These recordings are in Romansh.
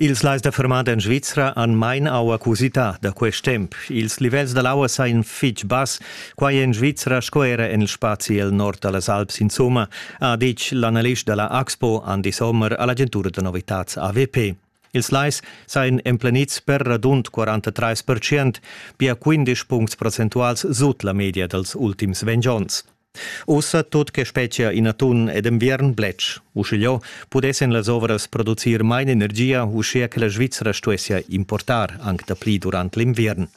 Ils lais da fermada en Svizra han main aua ch'usità da quest temp. Ils livels da l'aua sajan fitg bass, quai en Svizra sco era en il spazi el nord da las Alps insumma, ha ditg l'analist da la Axpo Andi Sommer a l'agentura da novitads AWP. Ils lais sajan emplenids per radund 43 pia 15 puncts percentuals sut la media dals ultims ventg onns. Ussa tut che spetgia in atun ed enviern bletsch. Uschigliò pudessan las ovras producir main energia, uschia che la Svizra stuessia importar anc dapli durant l'inviern.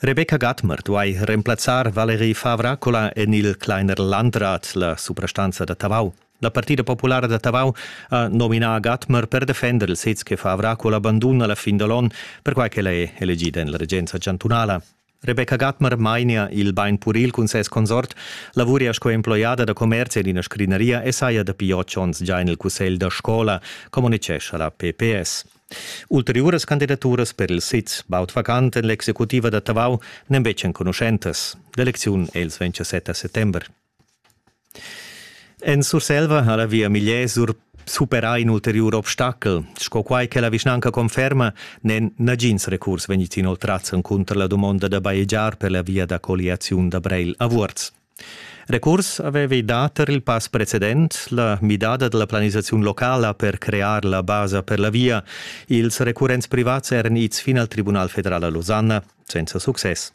Rebecca Gatmer duai remplazzar Valerie Favracola en il Kleiner Landrat, la suprastanza da Tavau. La Partida Populara da Tavau ha nominà Gatmer per defender il sez che Favracola banduna la fin da l'on, perquai ch'ella è elegida en la regenza chantunala. Rebecca Gatmer mainia il bain puril cun ses consort, lavuria sco emploiada da commerzi en ina scrinaria e saja dapi otg onns gia en il cussegl da scola, communitgescha la PPS. Ulteriuras candidaturas per il siz baud vacant en l'executiva da Tavau n'èn betg enconuschentas. L'elecziun è ils 27 settember. En Surselva ha la via Migliesur superà in ulteriur obstachel. Sco quai che la vischnanca conferma, n'èn nagins recurs vegnids inoltrads encunter la dumonda da bajegiar per la via da colliaziun da Breil a Vuorz. Recurs avevi dà tar il pass precedent la midada da la planisaziun locala per crear la basa per la via. Ils recurrents privats eran ids fin al Tribunal federal a Losanna senza success.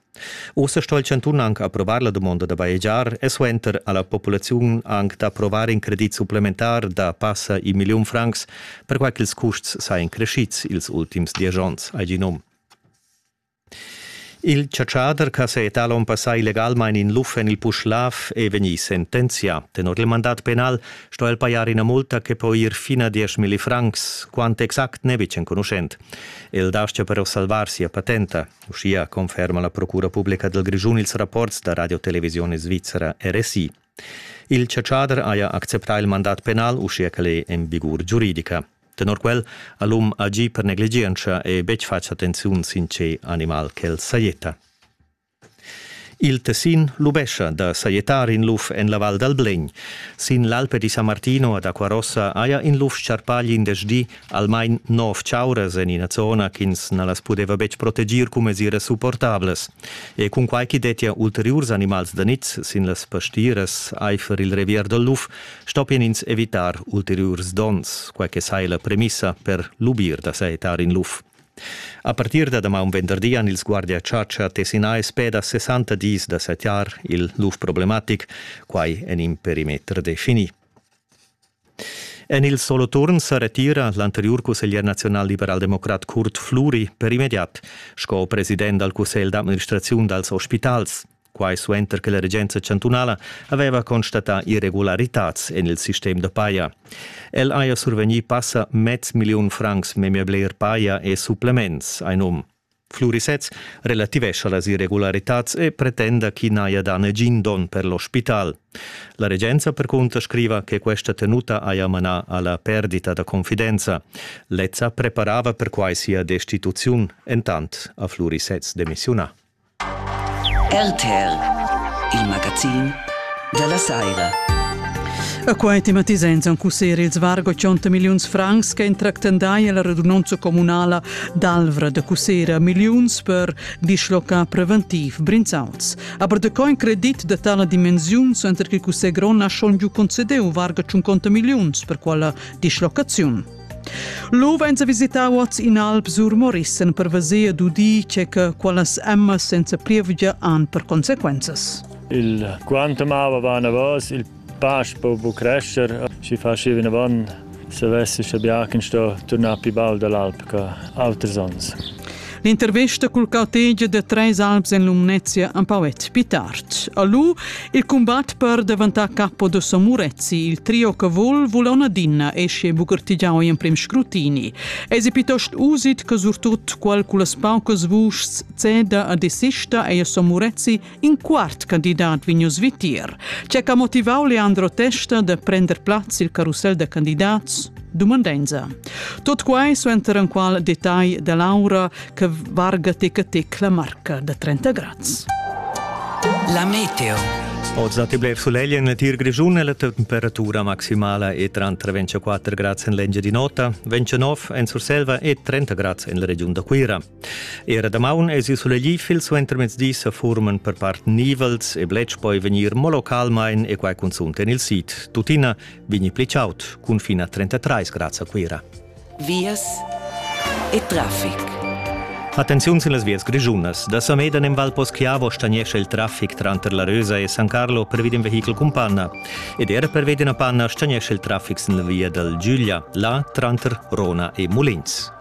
Ussa sto il chantun anc approvar la dumonda da bajegiar e suenter ha la populaziun anc d'approvar in credit supplementar da passa in milliun francs, perquai ch'ils custs sajan creschids ils ultims diesch onns, ha gì num. Il chatschader ch'ha setà l'onn passà illegalmain in luf en il Puschlav è vegnì sentenzià. Tenor il mandat penal sto el pajar ina multa che po ir fin a 10.000 francs. Quant exact n'è betg enconuschent. El dastga però salvar sia patenta. Uschia conferma la Procura publica dal Grischun ils rapports da Radiotelevisione Svizzera RSI. Il chatschader haja acceptà il mandat penal uschia ch'el è en vigur giuridica. Tenor quel ha l'um agì per negligientscha e betg fatg attenziun sin tge animal ch'el sajetta. Il Tessin lubescha da sajettar in luf en la Val dal Blegn. Sin l'Alpe di San Martino ad Acquarossa haja in luf scarpà glindesdi almain nov chauras en ina zona ch'ins na las pudeva betg proteger cun mesiras supportablas. E cunquai ch'i dettia ulteriurs animals da niz sin las pastiras aifer il revier dal luf, stoppien ins evitar ulteriurs donns, quai che saja la premissa per lubir da sajettar in luf. A partir da damaun venderdi han ils guardiachatscha tessinà e speda 60 dis da sajettar il luf problematic, quai en in perimeter definì. En il Soloturn sa retira l'anteriur cusseglier naziunalliberal-democrat Kurt Fluri per immediat sco president dal cussegl d'administraziun dals ospitals. Quai suenter che la regenza chantunala aveva constatà irregularitads en il sistem da paja. El haja survegnì passa mez milliun francs memia bler paja e supplements, ein um. Flurisez relativescha las irregularitads e pretenda ch'i n'haja dà negin don per l'ospital. La regenza percunter scriva che questa tenuta haja manà alla perdita da confidenza. Lezza preparava perquai sia destituziun, entant a Flurisez demissiunà. RTL, il magazin della Saira. A quai tematiza en cusseri ils vargo 100 miliuns francs che entractendai la radunanza comunala D'Alvra de Cussera milliuns per dischlocar preventiv Brinzauls. Aber de co in credit de tala dimensiun center che Cussegron ha schon giu concedeu varga 50 milliuns per quella dislocaziun. Lo venza visitau oz in alp sur Morissen per veser d'udi che che quallas emmas senza plievgia han per consequenzas. Il quantum ava va anavos, il Pasch po bu crescher, schi faschi vinavon savessi sche biachen sto turnar pli baul dall'alp che auters onns. L'intervesta cul cautegia da Treis Alps en Lumnezia empau et pli tard. A lu il combat per daventar capo da Somurezzi, il trio che vol volona dinna esce bugertigiau in prim scrutini. Esi piuttost usit che surtut qual culas paucas vuschs ceda a desista ei a Somurezzi In quart candidat vegn oz vitier. Tge ha motivau Leandro Testa da prender plaz il carusel da candidats? Dumandenza. Tot quai suenter enqual detagl da Laura che varga teca tec la marca da 30 grads. La meteo. Oz datti blev sulegl en letir grischun e la temperatura maximala è tranter 24 grads en l'Engiadin'Ota, 29 en Surselva e 30 grads en la regiun da Cuira. Era damaun esi sulegli fil suentermezdi sa furman per part nivels e bletsch poi vegnir mo localmain e quai cunzunt en il sid. Tuttina vegni pli chaud, cun fin a 33 grads a Cuira. Vias e traffic. Attenziun sin las vias grischunas. Da Samedan in Val Poschiavo stagnesce il traffic tranter la Rösa e San Carlo per vid in vehichel cun panna. Ed era per vid una panna stagnesce il traffic sin la via dal Giuglia, là tranter Rona e Mulins.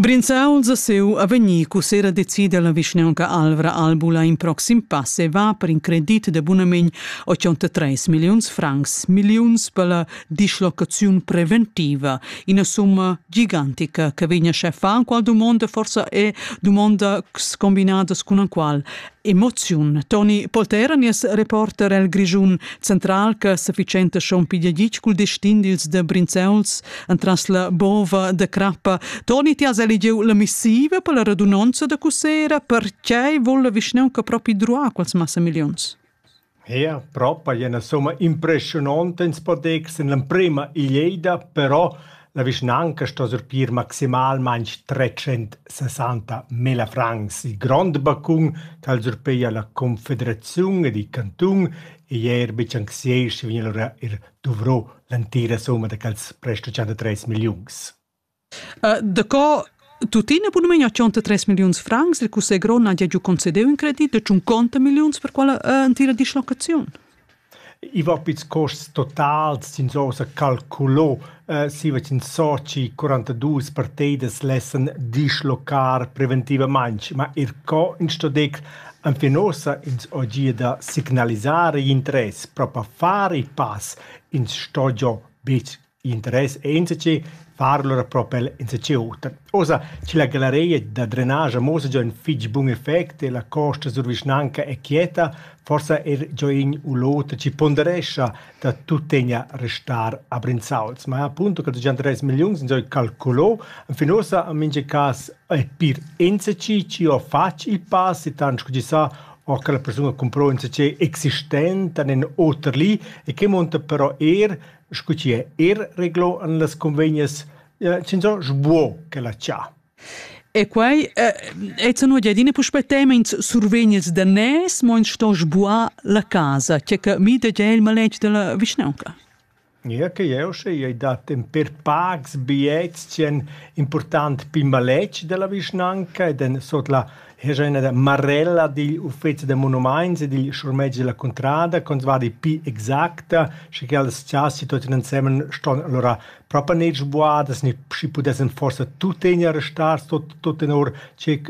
Brinzauls a seu a vegnir cussera decida la vischneunca Alvra Albula in proxim pass e va per in credit de bunament 83 milliuns francs, milliuns per la dislocaziun preventiva, ina summa gigantica che vegna scheffa qual dumonda forsa è dumondas combinadas cun la qual Emoziun. Toni Poltera, nies reporter el Grischun central che sufficiente schon pigliagic cul destin dils de Brinzeuls entras la bova de crappa. Toni, ti has eligiu la missiva per la radunonza de Cusera, perché vol la vischnaunca propi druar quels massa millions? Eir propa gnü üna summa impreschiunonta ins po dir ch'es in l'emprima eglieda, però la vischnanca sto surpir maximalmaing trecentssessanta mila francs. Il grond bacun ch'al surpeja la confederaziun ed il cantun ei eir be chanzier schi vegn alura eir duvrà l'entira summa da quels presch da tschentatreis milliuns. Daco tuttina bunamain tschonta tres milliuns francs, il cussegl grond n'haja giu concediu in credit da tschunconta milliuns per quella entira dislocaziun? I va pils custs totals, ins ha ussa calculo siva ch'ins soci 42 partidas lessan dislocar preventivamain, ma er co in sto decr enfin ussa ins ho gia da signalisar igl interess, propi far il pass, ins sto giò betg Interess enzatgi far lura propel enzatgi oter. Ussa chi la galeria da drenage muossa giò ün fich bun effect e la costa sur vischnanca è quieta, forsa er giò in u l'oter chi ponderescha da tuttegna restar a Brinzauls. Ma appunto che già tres milliuns han già calculo, fin ussa in mincha cas è pir enzatgi chi ho fatg il pass e tant scu chi sa o che la persun ha cumprò enzatgei existent in oter li e che monta però er scu chi è eir reglo in las convegnas, chinzò sbuo ch'ella cha. E quai è zano adina puspè tements survegnids da nes, mo ins sto sbuar la casa, che che mi da già il maletg della vischnanca. Ja, che eu sche ei dat en per pags biets c'è important pi maletg della vischnanca ed en sot la Hegia üna marella digl uffezi da monumaints e digl schurmetg della cuntrada con va di pli exacta, sche che las chasas tuottan insemen ston alura propa gnir sbuadas, gnir schi pudessan forsa tuttegna restar tot tot tenor che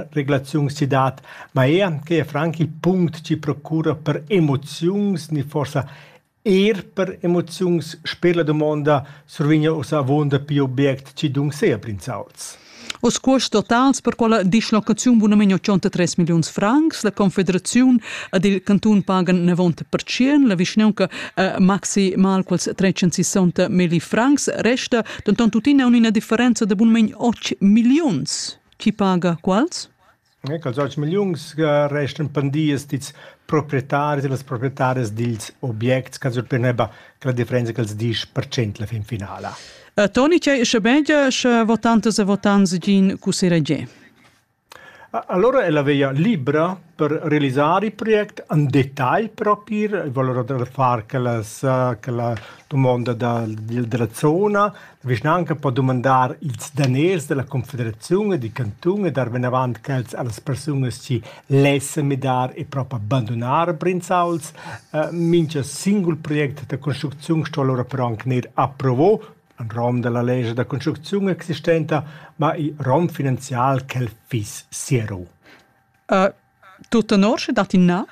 regulaziun si dat, ma eir che è franc il punct chi procura per emoziuns, gnir forsa Er per emoziuns sper la dumonda survegna uss avunda pli object chi dunseia brinzauts. Oz cuosts totals per quella dislocaziun bunamain 83 milliuns francs. La Confederaziun ed il cantun pagan 90%. La vischnaunca eh, maxi mal quels 360 milli francs resta. Denton tuttina una differenza de bunamain 8 milliuns. Chi paga quals? E cals auters milliuns che restan pendias dils proprietaris e las proprietaras dils objects ch'els obteneban quella differenza ch'els disch per cent la fin finala. Uh, Toni, tgei sche begia sche votantas e votants gin cussiregie? Allora è la veia libra per realizzare il progetto in dettaglio proprio, voglio fare che la, che la domanda della zona, La vischnaunca po dumandar ils daners dalla confederaziun e dil cantun e dar vinavant quels allas persunas chi lessen midar e propa bandunar Brinzauls. Mincha singul project da construcziun sto alura però anc gnir approvo en rom dalla lescha da construcziun existenta, ma in rom finanzial ch'el fiss siero. Tut tenor sche dat in na?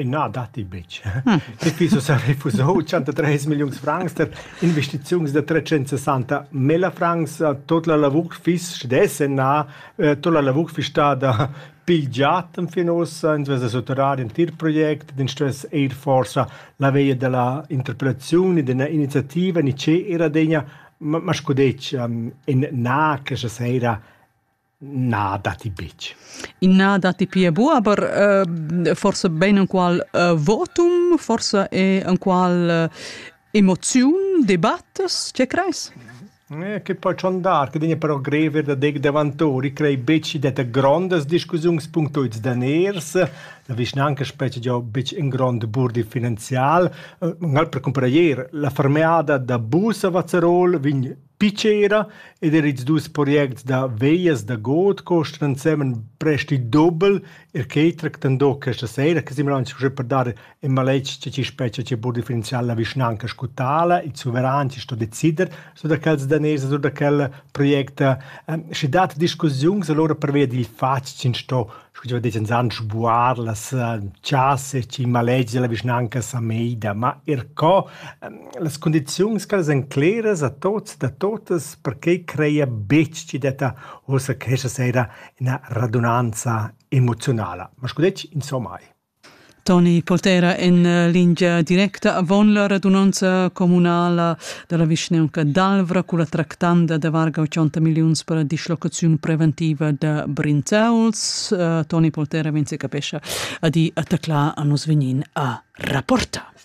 Na, datti betg. Hm. Dapi so sa refusau 103 milliuns francs per investiziuns da 360 mila francs. Tut la lavur fis stess na, eh, tut la lavur fis stada pigliat fin ussa, ins vesa sottorar in tir project, din stress eir forsa la veia della interpretazione, della iniziativa, ni ce era degna, ma, ma scudeccia, in na che se sera Na, datti betg. Na, datti pia bu, aber äh, forse ben enqual äh, votum, forse è enqual äh, emoziun, debattas, che creis? Eh, che poi schon dar, che degna però grever da deg davantori, crei beci detta grondas discussions punctuits daners, la vischnanca specie già bec in grond burdi finanzial. Ngal per comprar ier la fermeada da bus a Vazzerol vegn Pitschera ed er ils dus projects da veglias da god costan ensemen prest il dubel, er quei tractan do questa sera che Simon aunc uschè per dar in maletg tge chi spetga chi po differenziar la vischnanca sco tala, il suveran chi sto decider sur da quels daners e sur da quel project. Schi dat discussiuns alura pervia dil fatg ch'ins sto scu chi va disch inzand sbuar las chasa e chi malegia la vischnanca sa meida, ma eir co las cundiziuns ch'ellas èn cleras a tots da totas perquai creia betg chi detta uossa questa sera üna radunanza emoziunala. Ma scu detg insomma eir. Toni Poltera en lingia directa avon la radunonza communala dalla vischnaunca d'Alvra culla tractanda da varga 80 milliuns per la dislocaziun preventiva da Brinzauls. Toni Poltera vegn secapescha a di a taclar a nus vegnin a rapportar.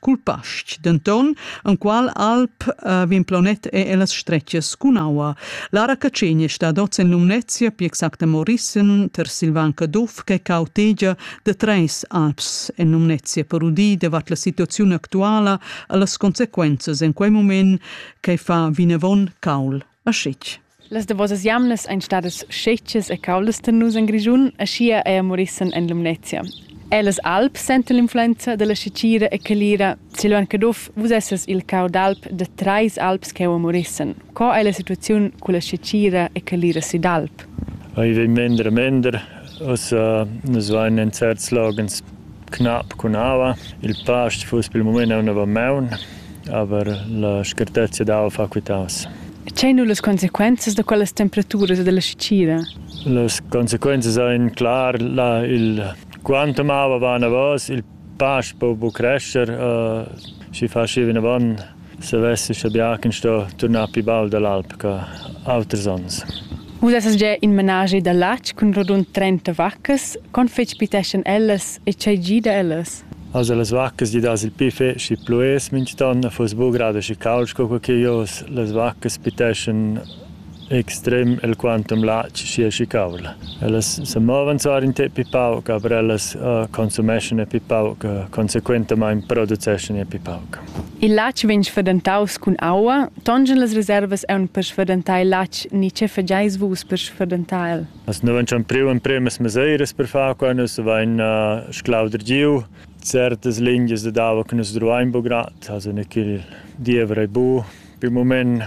cul pastg, denton enqual alp uh, vin planet e ellas stretgas cun aua. Lara Cacegna stat oz en Lumnezia, pi exacta Morissen, ter Silvan Caduff, che cautegia de treis alps en Lumnezia per udì davart la situazione actuala e las conseguences en quei moment che fa vinavon caul. a schich. Las davosas jamnas ein stadas schechas e caulas per nus en Grischun, aschia ei Morissen en Lumnezia. Ellas Alp senta l'influenza dalla schechira e calira. Silvan Caduff, vus essas il cau d'alp da treis alps cheu a Morissen. Co ei la situaziun culla schechira e calira sid Alp? Ei vegn mender e mender. Ussa nus vein en certs loghens Cunab cun aua. Il past fuss pel mumaint aunc avamaun, aber la scartezia d'aua fa quitaus. Tgei nu las consequenzas da quellas temperaturas e dalla sitgira? Las consequenzas ein clar, la, il, quantum aua va anavos, il past po bu crescher, schi fasch ir vinavon savess uschè bia ch'ins sto turnar pli baul dall'alp che auters onns. Vus essas gia in menaschi da latg cun rodund trenta vaccas. Con fetg piteschan ellas e tgei gida ellas? Also las vaccas di das il pli feci plues mintgton a fuss bu grad aschi cauld sco co che jos. Las vaccas piteschan extrem el quantum latg sia schicavla. Ellas se movan sar in te pi pauc, aber ellas uh, consumeschan e pi pauc, uh, consequentamaing produceschan e pi pauc. Il latg vegn sferdentaus cun aua, tongen las reservas aun per sferdentar il latg ni che fageis vus per sferdentar el? As nu vain priu empremas meseiras per far qua, nus vain uh, sclauder giu certas lingias de dava che nus druain bu grad, also ne ch'il diever ei bu. Pi moment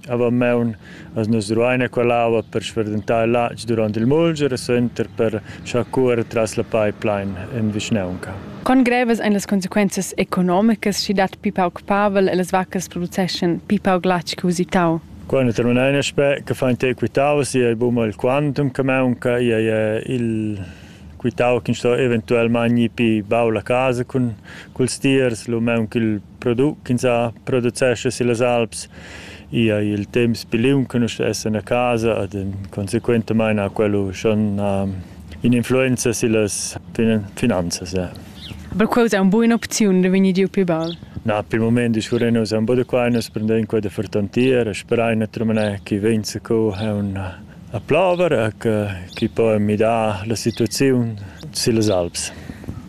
Avamaun as nus ruaina quell'aua per sferdentar il latg durant il mulger e suenter per schar cuorer tras la pipeline en vischnaunca. Con grevas ein las consequenzas economicas sch'i dat pli pauc pavel e las vaccas produceschan pli pauc latg che usitau? Quando terminai in aspect che fa in te quitau si ei buma il quantum che maunca ei il quitau che sto eventualmente gnir pi bau la casa cun culs tiers lu maunca il product ch'ins ha producescha sillas alps. I ei il temps pli liung che nus essan a casa ed consequentamain ha quello schon in'influenza sillas finanzas. Aber quella è una buona opzione da venir giu pli baul. Na, per il moment discurrein nus un po da qua, nus prendem quella fertantiera, sperain a trumanar che venza co è una A plover e che chi po midar la situaziun sillas alps.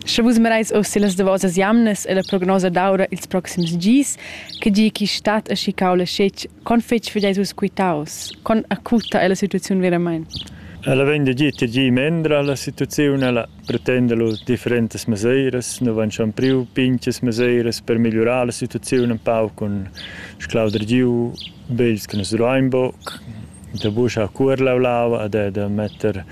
Sche vus mereis oz sillas davosas jamnas e la prognosa d'aura ils proxims gis, che gi chi stat e schi caula schetg, con fetg vegeis vus quitaus, con acuta è la situaziun veramain? Ella vegn da gir tgi mendra la situaziun, ella pretenda lu differentas meseiras, nu van schon priu pinchas meseiras per migliurar la situaziun un pau cun sclauder giu, begls che nus duein buc, da buschar cuor lau lava e da, da metter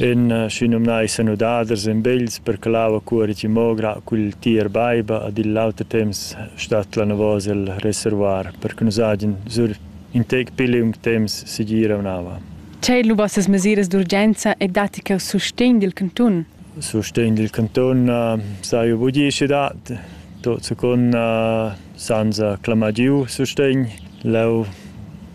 ün schinumnai sanudaders in begls per che lava cuorigi mo gra cul tier baiba ed igl auter temps stat l'anavos el reservoir per che nus hagin sur in tec pli liung temps segir un'ava. Tgei lubasses mesiras d'urgenza e datti cheu sustegn dil cantun? Sustegn dil cantun s'haiu buca schi dat. Tot secund Senza clamar giu sustegn, leu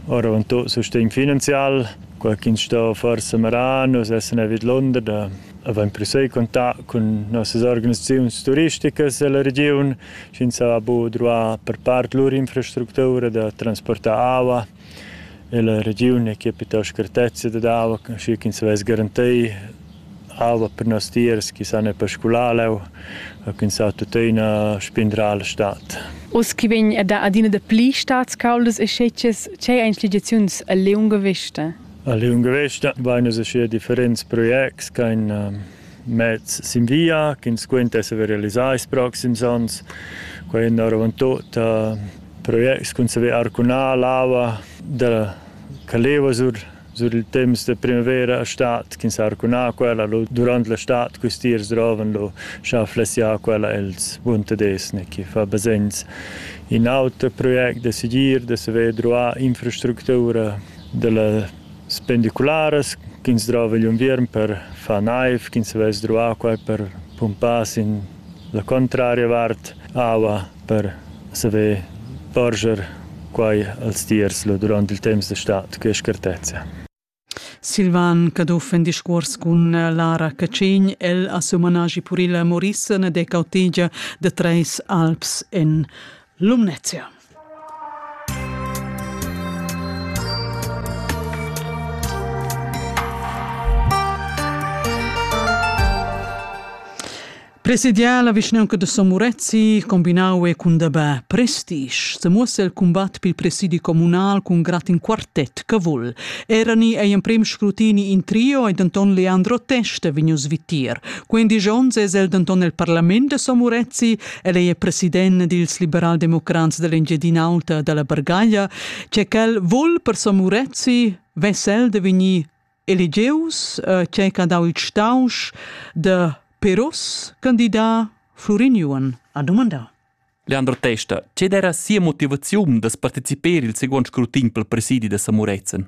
oravontut sustegn finanzial. Quei ch'ins sto forsa merar, nus essan a vidlunder da avain proseguì contact cun nossas organisaziuns turisticas ella regiun, sch'ins ha bu druà per part lur infrastructura da transportar aua. E la regiun è che piuttost grtezia dad aua, schi ch'ins vess garantei aua per nostiers chi san er per scular leu e ch'ins ha tuttina spindrar la stad. Uss chi vegn a dar adina dapli stads cauldas e schetschas, tgei ein schligiaziuns a liunga vesta? A liunga vesta vain nus uschia differents projects ch'ain mezs sin via ch'ins quenta esser realisà ils proxims onns. Quai è oravant tut uh, projects cun saver arcunar l'ava da Caleva sur sur il temps de primavera estat ch'ins ha arcunà quella lo, durant l'estat custiers droven lo schaflessià quella els Buntadesne che fa basegns in auter project de sigir de saver druar infrastructura della Spendicularas ch'ins drova igl unviern per far naiv, ch'ins havess druvà quai per pumpar sin la cuntraria vart aua per saver porscher quai als tiers durant il temps d'estat, che schertezza. Silvan Caduff en discuors cun Lara Cacin. El ha siu managi puril a Maurissen ed è cautegia da Treis Alps en Lumnezia. Presidià la vischnaunca de Somurezzi combinau e cun dabà prestige se muossa il combat pil presidi comunal cun grad in quartet che vul. Erani ei emprem scrutini in trio e denton Leandro Testa vegnius vitir. Quindi Jones es el denton el parlament de Somurezzi El è president dils liberaldemocrats dell'Engiadin'Alta dalla Bargaglia, che quel vul per so Murezzi vesel de vegnir elegius, eh, che ha dau il stausch de Peros candidat Florin Juan a domandar. Leandro Testa, ce era sia motivaziun da partecipare il seguent scrutin pel presidi da Samurezen?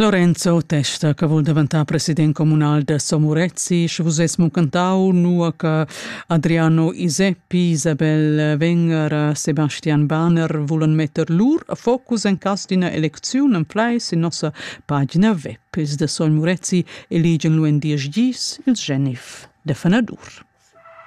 Lorenzo testa che vul daventar president comunal da Somurezzi, sche vus es muncantau, nua che Adriano Iseppi, Isabel Wenger, Sebastian Bahner vulan metter lur focus en cas d'ina elecziun en flai sin nossa pagina web. Ils da Somurezzi eligen lu en diesch gis ils Genif de Fenadur.